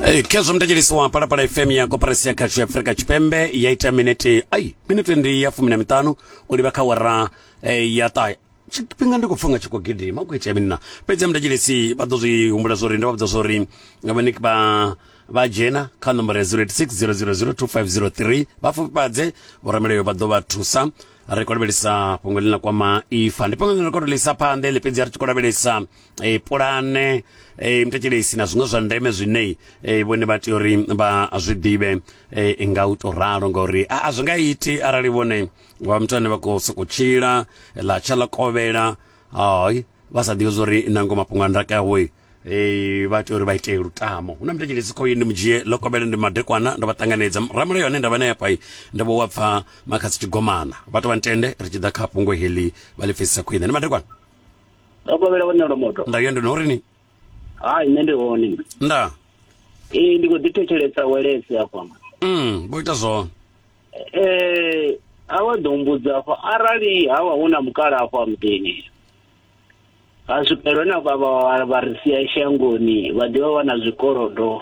Hey, khezwo mthetshelisi wa palapala fm ya koporasi ya khasho ya afurika tshipembe ya ita minete ai minete ndi ya fumi na miṱanu u livha kha wara eh, ya ṱahe tshifhinga ndi khou pfha nga tshi khou gidima u khou itea mini na fhedzi ya mthetshelisi vha ḓo zwi humbula zwori ndo vha vhudza zwori vhaniki vha vha dzhena kha nomboro ya 0860002503 vha fhufhadze vhoramelayo vha ḓo vha thusa ri khou lavhelesa fhungo ḽine ḽa kwama ifa ndi fhungo ḽine ri khou tou ḽisa phanḓa ḽi fhedzi a ri tshi khou lavhelesa e, pulane e, mutetshelesi na zwiṅwe zwa ndeme zwine e, vhone vha tea uri vha zwi ḓivhe e, nga u to ralo ngauri a, a zwi nga iti arali vhone vha muthu ane vha khou sokou tshila ḽa tsha ḽa kovhela hai vha sa ḓivhi zwauri nango mafhungo a ndaka yawe Eh, vha tea uri vha ite lutamo hu na mutetshelesi khoyi ndi mudzhie ḽo kovhela ndi madekwana ndo vha ṱanganedza ramulayo ane nda vha naye afha ndo vha wa pfa makhasi tshigomana vha to vha ntende ri tshi ḓa kha fhungo heḽi vha ḽi pfesisa khwine ndi madekwana ndo kovhela vhone lwa moto nda yo ndi no ri ni hai nṋe ndi hone nda ee ndi khou ḓi thetshelesa welesi afha mm vho ita zwone eh a vha ḓo mbudza afha arali ha vha hu na mukala afha muḓini ha swikelwe na vha vha vha ri sia shangoni vha ḓivha vha na zwikolodo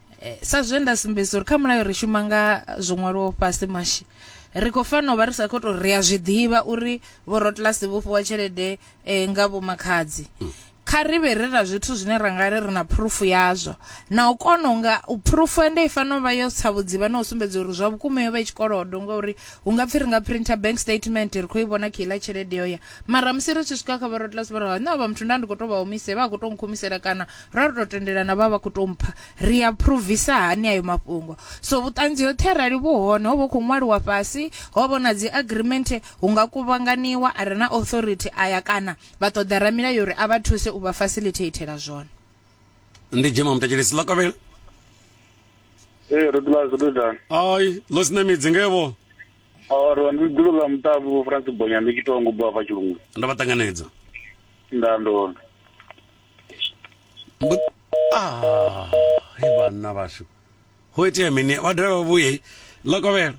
Eh, sa zwe nda sumbedzisa uri kha mulayo ri shuma nga zwo ṅwaliwaho fhasi mashi ri khou fanela u vha ri sa khou tou ri a zwi ḓivha uri vhorotlasi vho fhiwa tshelede eh, nga vhomakhadzi hmm. kha ri vhe ri na zwithu zwine ra nga ri ri na phurufu yazwo na u kona u nga phurufu ende i fanela u vha yo tsa vhudzivha na u sumbedza uri zwa vhukuma yo vha i tshikolodo ngauri hu nga pfhi ri nga printer bank statement ri khou i vhona kha iḽa tshelede yo ya mara musi ri tshi swika kha vhorotlasi vha ri ha nṋe vha muthu nda ndi khou tou vha humise vha khou tou nkhumisela kana ra ri tou tendelana vha vha khou tou mpha ri a phuruvisa hani ayo mafhungo so vhuṱanzi hoṱhe arali vhu hone ho vha khou ṅwaliwa fhasi ho vha na dzi agreement hu nga kuvhanganiwa a re na authority aya kana vha ṱoḓa ramilayo uri a vha thuse u vha facilitathela zwone ndi dzhema mutatshelesi ḽa kavhela ee ro ḓila zwo ḓani ai ḽo sina midzi ngevo ro ndi ḓilo ḽa muṱavhi vho francis bonya ndi tshi tongo bva fha tshilungu ndo vha ṱanganedza nda ndona ah, he vhanna vhashu ho itea mini vha dovhe vha vhuye ḽa kovhela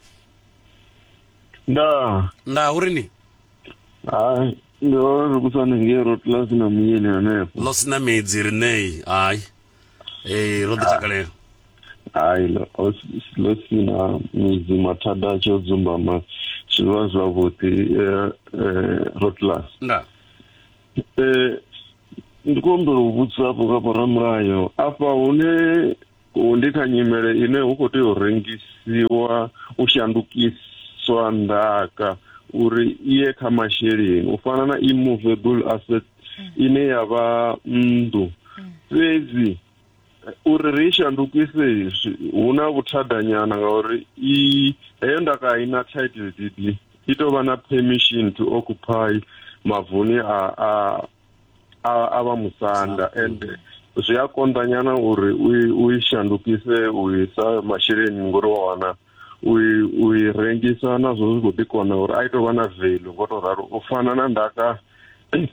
nda nda uri ni hai ndi ro ri kusane ngei ro tula sina muyeni hanefho ḽo sina midzi ri nei hai ee ro ḓi takalela hai ḽo sina midzi mathada a tshi o dzumbama zwi vha zwavhuḓi eh, eh, rotlus nda Eh, ndi khou humbela u vhudzisa hafho nga vhoramulayo afha hune hu- ndi kha nyimele ine hu khou tea u rengisiwa u shandukiswa ndaka uri i ye kha masheleni u fana na immovable asset ine ya vha nnḓu fhedzi uri ri shandukise hu na vhuthadanyana ngauri i heyo ndaka i na title deed i tou vha na permission to occupy mavuni a a a a vha musanda and zwi a konḓanyana uri u i shandukise u isa masheleni ngori wa wana u i rengisa nazwo zwi khou ḓi kona uri a i tou vha na velu ngo tou ralo u fana na ndaka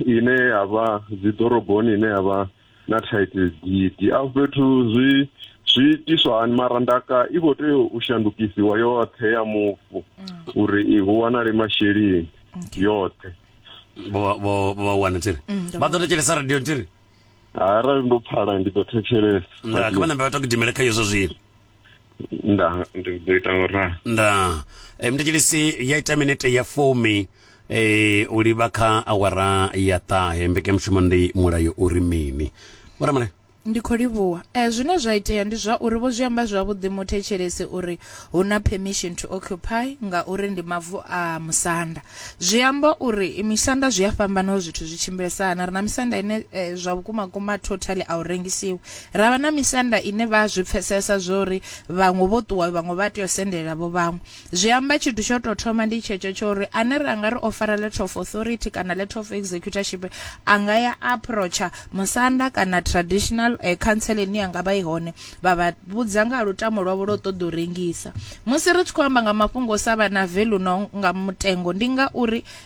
ine ya vha dziḓoroboni ine ya vha na thaidzo gidi afho fhethu zwi zwi itiswa hani mara ndaka i khou tea u shandukisiwa yoṱhe ya mufu mm. uri i hu wanale masheleni yoṱhe vha wana tiri mm, vha ḓo thetshelesa radio tiri arali ndo pfala ndi ḓo thetshelesa kha vha nambe vha to gidimele kha yezwo zwino nda ndi ḓo ita ora nda e, mthetshelisi ya ita minete ya fumi e, u livha kha awara ya ṱahe mbekanyamushumo ndi mulayo uri mini vhoramale Ndi khou livhuwa. Eh, zwine zwa itea ndi zwa uri vho zwi amba zwavhuḓi muthetshelesi uri hu na permission to occupy ngauri ndi mavu a musanda. Zwi amba uri i misanda zwi a fhambana uri zwithu zwi tshimbilesa hani. Ri na misanda ine eh, zwa vhukuma kuma totally a u rengisiwi. Ra vha na misanda ine vha zwi pfesesa zwori vhaṅwe vho ṱuwa vhaṅwe vha tea u sendelela vho vhaṅwe. Zwi amba tshithu tsho tou thoma ndi tshetsho tsho uri ane ra nga ri o fara letter of authority kana letter of executorship a nga ya approacher musanda kana traditional uh, eh, council ine ya nga vha i hone vha vha vhudza nga lutamo lwavho lwo ṱoḓa u rengisa. Musi ri tshi khou amba nga mafhungo o sa vha na value no nga mutengo ndi nga uri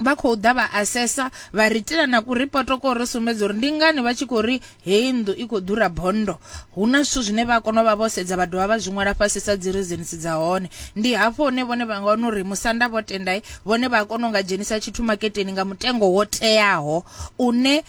vha khou ḓa vha asesa vha ri itela na ku ripoto ko ri sumbedza uri ndi ngani vha tshi khou ri heyi nnḓu i khou ḓura bondo hu na zwithu zwine vha kona u vha vho sedza vha dovha vha zwi ṅwala fhasi sa dzi reasons dza hone ndi hafho hune vhone vha nga wana uri musanda vho tendai vhone vha kona u nga dzhenisa tshithu maketeni nga mutengo wo teaho une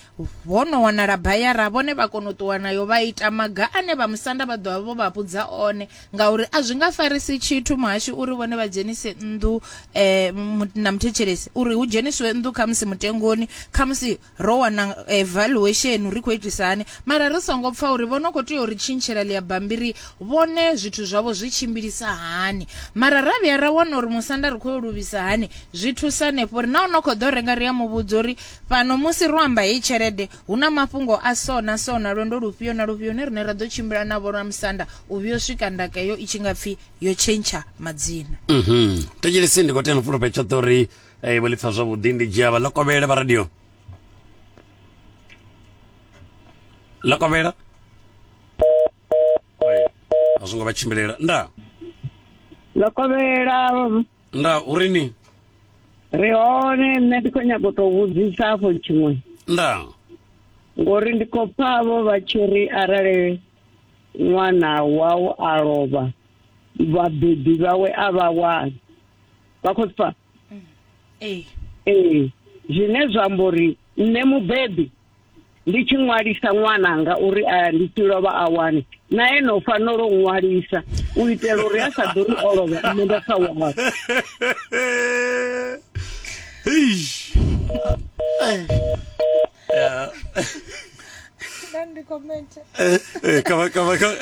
Ho no wanala bayara vhone vha kona u ṱuwa nayo vha ita maga ane vha musanda vha ḓovha vho vha vhudza one ngauri a zwi nga farisi tshithu muhashi uri vhone vha dzhenise nnḓu um na muthetshelesi uri hu dzhenisiwe nnḓu khamusi mutengoni khamusi ro wana eh, valuation ri khou itisa hani mara ri songo pfa uri vho no khou tea uri tshintshela ḽia bambiri vhone zwithu zwavho zwi tshimbilisa hani mara ra vhuya ra wana uri musanda ri khou yo luvhisa hani zwi thusa hanefho uri na u no khou ḓo renga ri a muvhudza uri Fhano musi ro amba heyi tshelede, hu na mafhungo a so na so na lwendo lufhio na lufhio hune riṋe ra ḓo tshimbila na vhoramusanda u vhuya u swika ndaka heyo i tshi nga pfi yo tshentsha madzina. Mhm. Thetshelesi ndi khou tea no fhulufhe tshoṱhe uri eh, vho ḽi pfa zwavhuḓi ndi dzhia vha ḽokovhele vha radio ḽokovhela a zwo ngo vha tshimbilela nda Lokovhela nda uri ni ri hone nṋe ndi khou nyaga u tou vhudzisa afho tshiṅwe nda ngori ndi khou pfa vho vha tshi ri arali ṅwana wau a lovha vhabebi vhawe a vha wani vha khou pfa mm. ee ee zwine zwa amba uri nṋe mubebi ndi tshi ṅwalisa ṅwananga uri a ndi tshi lovha a wane na ene u fanela u ṅwalisa u itela uri a sa ḓo ri o lovha nṋe nda sa wana Grande comenta. Eh, kama kama kama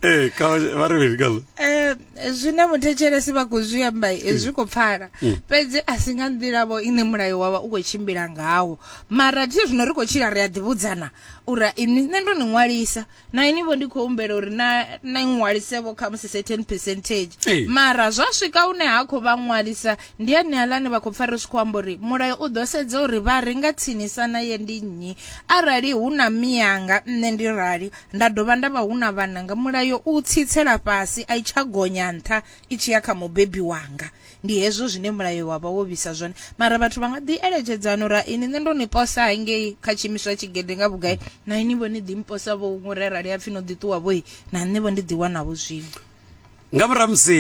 eh kama variviri kalo Eh, zwine muthetshelesi vha khou zwi amba eh, zwi khou pfala fhedzi a si nga nḓila vho ine mulayo wavha u khou tshimbila ngawo Mara thi zwino ri khou tshila ri a ḓivhudzana uri ini nṋe ndo ni ṅwalisa na ini vho ndi khou humbela uri na na ṅwalisevho kha musi certain percentage hey. mara zwa swika hune ha khou vha ṅwalisa ndi ane alani vha khou pfa ri tshi khou amba uri mulayo u ḓo sedza uri vha ri nga tsinisa na ye ndi nnyi arali hu na miyanga nṋe ndi rali nda dovha nda vha hu na vhananga mulayo u tsitsela fhasi a i tsha gonya nṱha i tshi ya kha mubebi wanga Ndi hezwo zwine Mulayo wa vha wo vhisa zwone. Mara vhathu vha nga ḓi eletshedza a no uri, Hai, ni nṋe ndo ni posa hangei kha tshiimiswa tshigede nga vhugai, na inivho ni ḓi mposa-vho huṅwe uri arali ha pfi no ḓi ṱuwa-vho-i, na nṋe-vho ndi ḓi wana-vho zwiṅwe. Nga murahu ha musi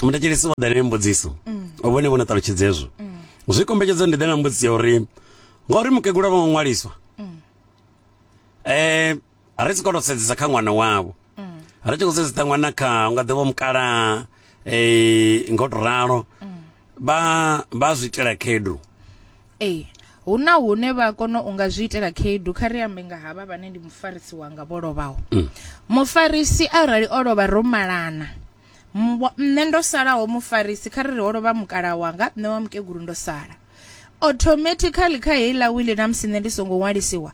muthetshelesi o ḓa na mbudziso, vhone vho no ṱalutshedza hezwo, zwi kombetshedza uri ndi ḓe na mbudziso ya uri, Ngauri mukegulu a vho ngo ṅwaliswa, ri tshi khou tou sedzesa kha ṅwana wavho ri tshi khou sedzesa ṅwana kha u nga ḓivha mukala um ngo to ralo vha vha zwi itela khedu ee hu na hune vha kona u nga zwi itela khaedu kha ri ambe nga havha vhane ndi mufarisi wanga vho lovhaho mm. mufarisi arali o lovha ro malana nṋe ndo salaho mufarisi kha ri ri ho lovha mukala wanga nṋe wa mukegulu ndo sala automatically kha heiḽa wili na musi nṋe ndi songo ṅwalisiwa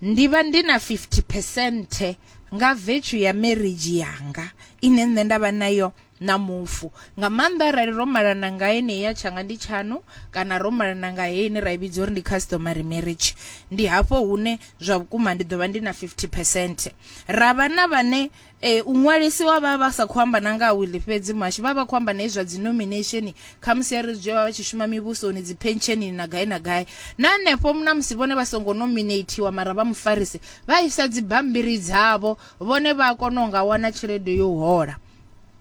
ndi vha ndi na 50 percent nga vetshu ya marriage yanga ine nṋe nda vha nayo na mufu nga maanḓa arali ro malana nga ene ya tshanga ndi tshanu kana ro malana nga ene ra i vhidza uri ndi customary marriage ndi hafho hune zwa vhukuma ndi ḓo vha ndi na 50 percent ra vha na vhane e u ṅwalisi wa vha vha sa khou amba na nga ha wili fhedzi muhashi vha vha khou amba na hezwi zwa dzinomination khamusi ya ri zwi vha vha tshi shuma mivhusoni dziphentshenini na gai na gai na hanefho na musi vhone vha songo nominatiwa mara vha mufarisi vha isa dzibammbiri dzavho vhone vha a kona u nga wana tshelede yo hola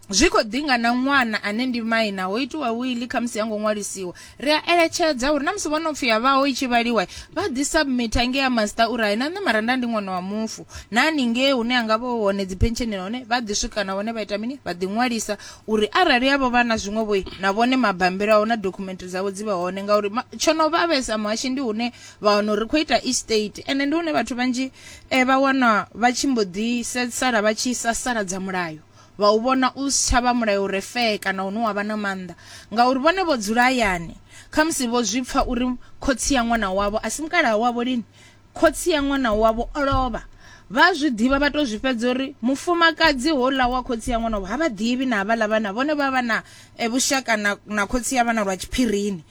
zwi khou ḓinga na ṅwana ane ndi maina ho itiwa wili khamusi ya ngo ṅwalisiwa ri a eletshedza uri na musi vho no pfi ya vhaho i tshi vhaliwa vha ḓi submita ngei a masita uri hai na nṋe mara nda ndi ṅwana wa mufu na haningei hune a nga vha hone dzi pentshenela hone vha ḓi swika na vhone vha ita mini vha ḓi ṅwalisa uri arali yavho vha na zwiṅwe vhoi na vhone mabambiri aho na dokhumenthe dzavho dzi vhe hone ngauri tsho no vha vhesa muhashi ndi hune vha wana uri ri khou ita estate ende ndi hune vhathu vhanzhi eh, vha wana vha tshi mbo ḓi sala vha tshi sasaladza mulayo vha u vhona u si tsha vha mulayo u re fee kana une wa vha na maanḓa, ngauri vhone vho dzula hayani, khamusi vho zwi pfa uri khotsi ya ṅwana wavho a si mukalaha wavho lini khotsi ya ṅwana wavho o lovha. Vha a zwi ḓivha vha tou zwi fhedza uri mufumakadzi houḽa wa khotsi ya ṅwana wavho ha vha ḓivhi na havhaḽa vhana vhone vha vha na e vhushaka na, na khotsi ya vhana lwa tshiphirini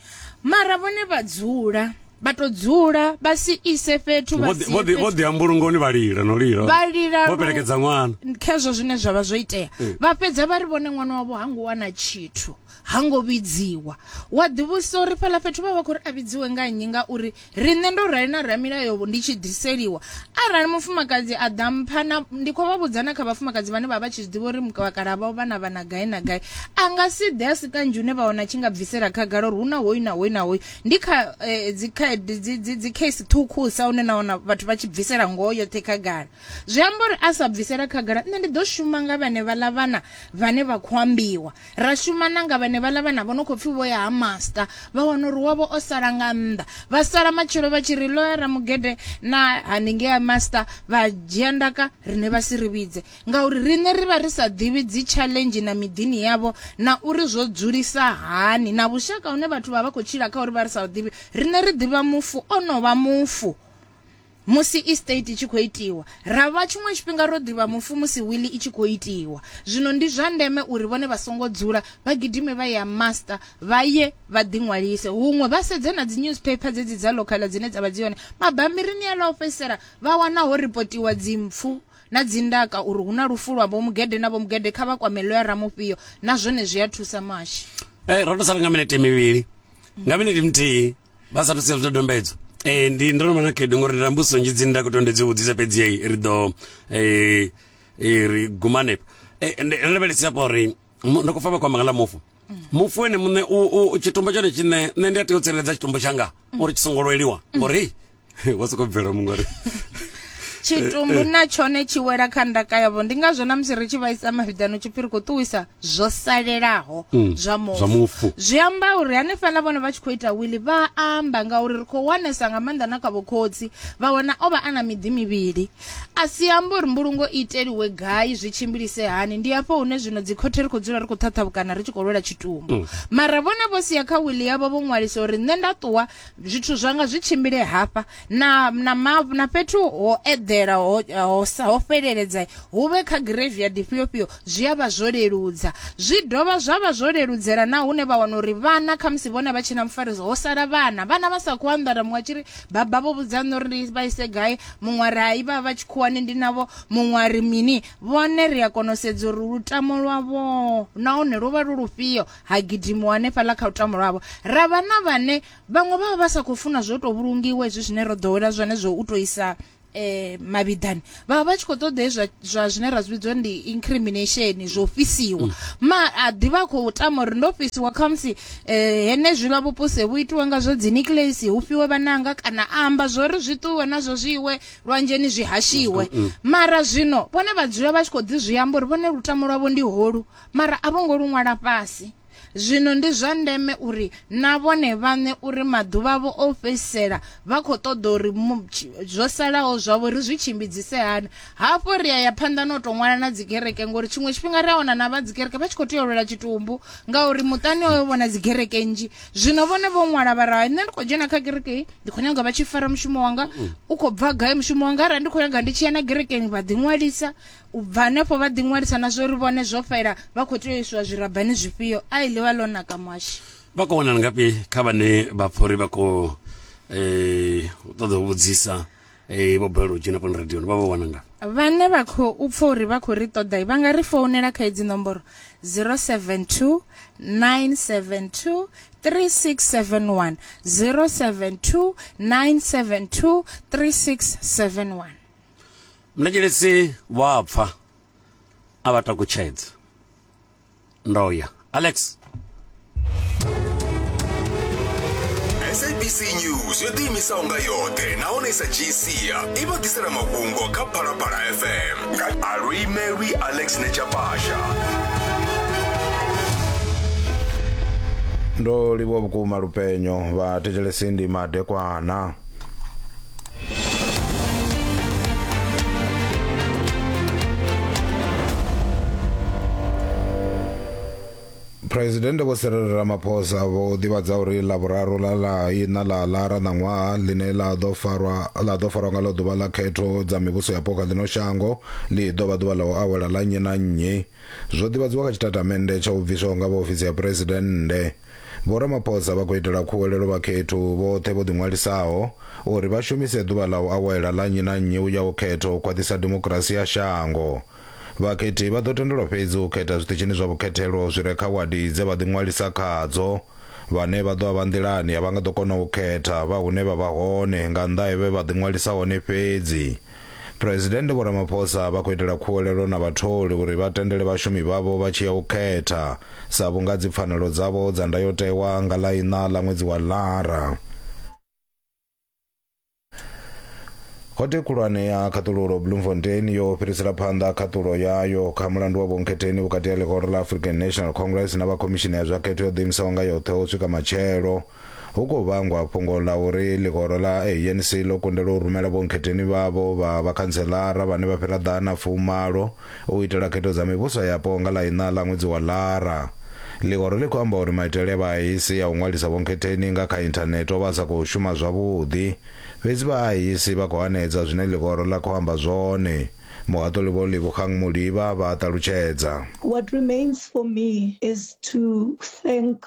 mara vhone vha dzula vha to dzula vha si ise fhethu vha si vho vho ḓi ambulungoni vha lila no lila vha lila vho pelekedza ṅwana khezwo zwine zwa vha zwo itea eh. vha fhedza vha ri vhone ṅwana wavho ha ngo wana tshithu ha ngo vhidziwa wa ḓivhusa uri fhala fhethu vha vha khou ri a vhidziwe nga nnyi ngauri Riṋe ndo rali na ramilayo ndi tshi ḓiseliwa. Arali mufumakadzi a ḓa mpha na ndi khou vha vhudza na kha vhafumakadzi vhane vha vha tshi zwiḓivha uri vhakalaha vhavho vha na vhana gai na gai a nga si ḓe a si kanzhi une vha wana tshi nga bvisela khagala uri hu na hoyu na hoyu na hoyu ndi kha eh, dzi khaedu dzi dzi dzi case ṱhukhusa une na wana vhathu vha tshi bvisela ngoho yoṱhe khagala zwi amba uri a sa bvisela khagala nṋe ndi ḓo shuma nga vhane vhaḽa vhana vhane vha khou ambiwa ra shuma na nga vhane vhaḽa vhana vho no khou pfhi vho ya ha master vha wana uri wavho o sala nga nnḓa vha sala matshelo vha tshi ri loya ramugede na haningei ha master vha dzhia ndaka rine vha si ri vhidze ngauri riṋe ri vha ri sa ḓivhi dzi challenge na miḓini yavho na uri zwo dzulisa hani na vhushaka hune vhathu vha vha khou tshila kha uri vha ri sa ḓivhi riṋe ri ḓivha mufu o no vha mufu Musi estate i tshi khou itiwa, ra vha tshiṅwe tshifhinga ro ḓivha mufu musi wili i tshi khou itiwa. Zwino ndi zwa ndeme uri vhone vha songo dzula, vha gidime vha ye ha Master, vha ye vha ḓiṅwalise. Huṅwe vha sedze na dzi-newspaper dzedzi dza local dzine dza vha dzi hone mabambirini aḽa o fhedzisela, vha wana ho ripotiwa dzimpfu na dzindaka uri hu na lufu lwa Vho-Mugede na Vho-Mugede, kha vha kwame Lawyer Ramufhio. Na zwone zwi a thusa, Muhashi. Ee, ro tou sala nga minete mivhili. Nga minete muthihi. vha sathu sia zwidodombedzwa eh ndi ndo no vha na khaedu ngori nda mbuso nzhi dzine nda khou tondedzi u vhudzisa fhedzi heyi ri ḓo eh, eh ri guma hanefho eh, ndo lavhelesisa pa uri ndo khou fa vha kwamba nga ḽa mufu mufu ene muṋe tshitumbo tshone tshine nṋe ndi a tea u tsireledza tshitumbo tshanga uri tshi songo lweliwa ngori wa soko bvela muṅwe ri tshitumbu eh, eh. na tshone tshi wela kha ndaka yavho ndi ngazwo na musi ri tshi vhaisa mavhiḓano tshipfiri khou ṱuwisa zwo salelaho mm, zwa mufu zwi amba uri hanefhaḽa vhone vha tshi khou ita wili vha amba ngauri ri khou wanesa nga maanḓa na kha vhokhotsi vha wana o vha a na miḓi mivhili a si amba uri mbulungo i iteliwe gai zwi tshimbilise hani ndi afho hune zwino dzikhothe ri khou dzula ri khou ṱhaṱhavhukana ri tshi khou lwela tshitumbu mm. mara vhone vho sia kha wili yavho vho ṅwalisa uri nṋe nda ṱuwa zwithu zwanga zwi tshimbile hafha na na mavu na fhethu ho eḓela ho ho, ho fheleledza hu vhe kha graveyard ifhio fhio zwi a vha zwo leludza zwi dovha zwa vha zwo leludzela na hune vha wana uri vhana kha musi vhone vha tshina mufariso ho sala vhana vhana vha sa khou anḓara muṅwe tshiri baba vho vhudza nṋe uri ndi vha ise gai muṅwe ari hai vha vha tshikhuwani ndi navho muṅwe ari mini vhone ri a kona u sedza uri lutamo lwavho nahone lwo vha lu lufhio ha gidimiwa hanefhaḽa kha lutamo lwavho ra vha na vhane vhaṅwe vha vha vha sa khou funa zwo tou vhulungiwa hezwi zwine ro ḓowela zwone zwo u tou isa eh mavhiḓani vha vha vha tshi khou ṱoḓa hezwa zwa zwine ra zwi vhidzwa ndi incrimination zwo fhisiwa mm. ma a ḓivha khou tama uri ndo fhisiwa khamusi eh henezwiḽa vhupuse vhu itiwa nga zwa dzi nucleus hu fhiwe vhananga kana a amba zwori zwi ṱuwe nazwo zwi iwe lwanzheni zwi hashiwe mm, mm. mara zwino vhone vha dzula vha tshi khou ḓi zwi amba uri vhone lutamo lwavho ndi holu Mara a vho ngo lu ṅwala fhasi. Zwino ndi zwa ndeme uri na vhone vhaṋe uri maḓuvha avho o fhedzisela vha khou ṱoḓa uri zwo salaho zwavho ri zwi tshimbidzise hani. Hafho ri a ya phanḓa na u tou ṅwala na dzikereke ngori tshiṅwe tshifhinga ri a wana na vha dzikereke vha tshi khou tea u lwela tshitumbu ngauri muṱani hoyo vho na dzikereke nnzhi. Zwino vhone vho ṅwala vha ra nṋe ndi khou dzhena kha kereke hei ndi khou nyaga vha tshi fara mushumo wanga u khou bva gai mushumo wanga arali ndi khou nyaga ndi tshi ya na kerekeni vha ḓiṅwalisa u bva hanefho vha ḓiṅwalisa na zwo ri vhone zwo fhela vha khou tea u iswa zwirabani zwifhio ai ḽi vha ḽo naka muhashi vha khou wanala ngafhi kha vhane vha pfha uri vha khou um ṱoḓa u vhudzisa um vho balelwa u dzhena fhano radioni vha vha wana ngafhi vhane vha khou pfha uri vha khou ri ṱoḓa vha nga ri founela kha hedzi nomboro 072 972 3671 072 972 3671 Mulavhelesi vha a pfa a vha takutshedza. Ndo ya. Alex. sabc news yo ḓiimisaho nga yoṱhe nahone sa gcia i vha ḓisela mafhungo kha phalaphala fm nga aluimelwi alex nechapasha ndo livhuwa vhukuma lupenyo vha thetshelesi ndi madekwana phuresidennde vho serere ramaphosa vho ḓivhadza uri ḽavhuraru ḽa ḽa ina ḽa ḽara ṋaṅwaha ḽine ḽa ḓo farwa ḽa ḓo farwa nga ḽo ḓuvha ḽa khetho dza mivhuso yapo kha ḽino shango ḽi ḓo vha ḓuvha ḽa u awela ḽa nnyi na nnyi zwo ḓivhadziwa kha tshitatamennde tsha u bviswaho nga vha ofisi ya phuresidennde Vho Ramaphosa vha khou itela khuwelelo vhakhethu vhoṱhe vho ḓiṅwalisaho uri vha shumise ḓuvha ḽa u awela ḽa nnyi na nnyi u ya u khetha u khwaṱhisa demokirasi ya shango. Vhakhethi vha ḓo tendelwa fhedzi u khetha zwiṱitshini zwa vhukhethelo zwi re kha wadi dze vha ḓiṅwalisa khadzo. Vhane vha ḓo vha vha nḓilani a vha nga ḓo kona u khetha vha hune vha vha hone nga nnḓa he vhe vha ḓiṅwalisa hone fhedzi. Phresidennde Vho Ramaphosa vha khou itela khuwelelo na vhatholi uri vha tendele vhashumi vhavho vha tshi ya u khetha sa vhunga dzi pfanelo dzavho dza ndayotewa nga ḽa iṋa ḽa ṅwedzi wa Lara. Khothe khulwane ya khaṱululo Bloemfontein yo fhirisela phanḓa khaṱulo yayo kha mulandu wa vhonkhetheni vhukati ha ḽihoro ḽa African National Congress na vha khomishini ya zwa khetho yo ḓiimisaho nga yoṱhe u swika matshelo. Hu khou vhangwa fhungo ḽa uri ḽihoro ḽa ANC ḽo kundelwa u rumela vhonkhetheni vhavho vha vhakhantseḽara vhane vha fhira ḓana fumalo u itela khetho dza mivhuso yapo nga ḽa iṋa ḽa ṅwedzi wa Ḽara. Ḽihoro ḽi khou amba uri maitele a vha ANC a u ṅwalisa vhonkhetheni nga kha inthanethe o vha a sa khou shuma zwavhuḓi. Fhedzi vha ANC vha khou hanedza zwine ḽihoro ḽa khou amba zwone. Muhaṱuli Vho Lebogang Moliba vha a ṱalutshedza. What remains for me is to thank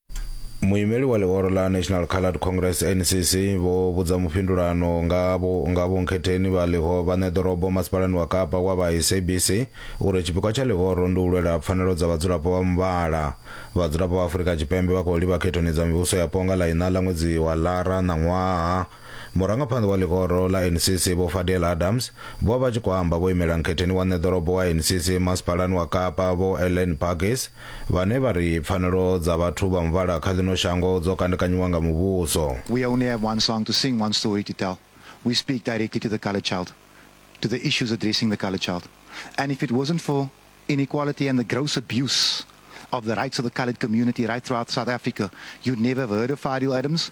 muimeli wa ḽihoro ḽa national coloured congress ncc vho vhudza mufhindulano nga vho nga vho nkhetheni vha ḽiho vhaṋe ḓorobo masipalani wa kapa wa vha sabc uri tshipikwa tsha ḽihoro ndi u lwela pfanelo dza vhadzulapo vha muvhala vhadzulapo vha afurika tshipembe vha khou livha khethoni dza mivhuso yapo nga ḽa iṋa ḽa ṅwedzi wa ḽara ṋaṅwaha Murangaphanḓa wa ḽihoro ḽa NCC Vho Fadeel Adams vho vha tshi khou amba vho imela nkhetheni wa nṋe ḓorobo wa NCC masipalani wa Kapa Vho Elaine Burgess vhane vha ri pfanelo dza vhathu vha muvhala kha ḽino shango dzo kandekanyiwa nga muvhuso. We only have one song to sing, one story to tell. We speak directly to the coloured child, to the issues addressing the coloured child. And if it wasn't for inequality and the gross abuse of the rights of the coloured community right throughout South Africa, you'd never have heard of Fadeel Adams